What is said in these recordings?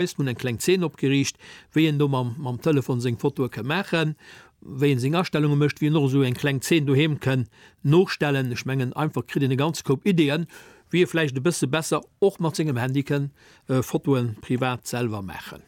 Eis hun eng kleng Zeen opgeriicht wéi een do mam Telefon seng Fotoe kënn maachen, wéi een seng Astellunge mécht, wéi een och esou eng kleng Zeen doheem kënn nostellen. Ech mengen einfach kritt een e ganz Koup Ideeën wéi ee vläicht e bësse besser och mat sengem Handy kënn Fotoe privat selwer maachen.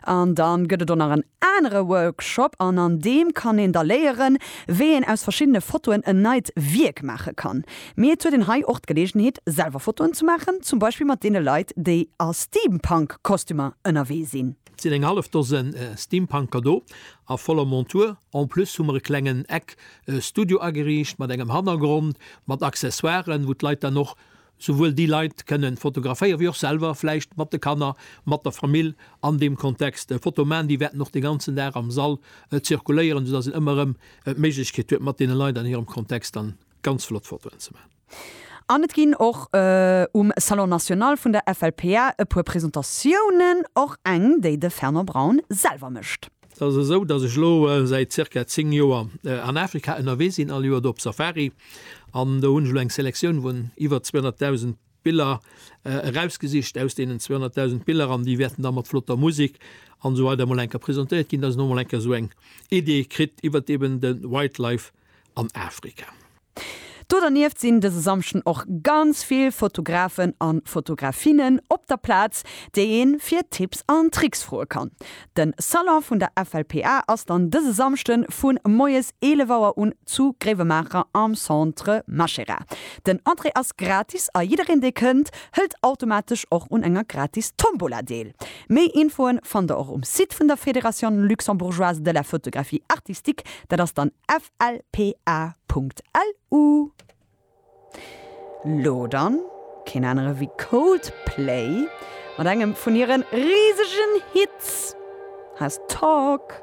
An da gëtt et och nach en anere Workshop an an deem kann een da léieren wéi een aus verschiddene Fotoen en neit Wierk maache kann. Mee et huet een hei och d'Geleegenheet selwer Fotoen ze maachen, zum Beispill mat deene Leit déi a Steampunk Kostümer ënnerwee sinn. Et sinn eng hallef Dosen Steampunker do a voller Montur. En plus hu mer e klengen Eck Studio ageriicht mat engem Hannergrond mat Accessoiren, wou d'Leit dann och souwuel déi Leit kënnen fotograféieren, wéi och selwer vläicht mat de Kanner, mat der Famill an deem Kontext Fotoe maachen. Déi wäerten och de ganzen Dag am Sall zirkuléieren, soudass een ëmmer erëm d'Méiglechkeet huet mat deene Leit an hirem Kontext dann ganz flott Fotoen ze man. An et ginn och um Salon National vun der FLPA e puer Presentatiounen, och eng, déi de Fernand Braun selwer mécht. Et ass esou, datt ech elo säit zirka 10 Joer an Afrika ënnerwee sinn, all Joer do op Safari. An do hunn ech elo eng Selektioun vun iwwer 200.000 Biller erausgesicht aus deenen 200.000 Biller, an déi wäerten da mat flotter Musek an esou weider emol eng Kéier presentéiert ginn, datt een emol eng Kéier esou eng Idee kritt iwwert eeben de Wildlife an Afrika. Do dernieft sinn dëse Samschden och ganz vill Fotografen an Fotografinnen op der Plaz, déi een fir Tipps an Tricks froe kann. Den Salon vun der FLPA ass dann dëse Samschden vun moies 11 Auer un zu Gréiwemaacher am Centre Machera. Den Entrée ass gratis a jiddereen dee kënnt hëllt automatesch och un enger gratis Tombola deel. Méi Infoen fannt der och um Site vun der Fédération Luxembourgeoise de la Photographie Artistique. Dat ass dann flpa.lu. Lo dann keen anere wéi Coldplay mat engem vun hiren risegen Hits, Has Talk.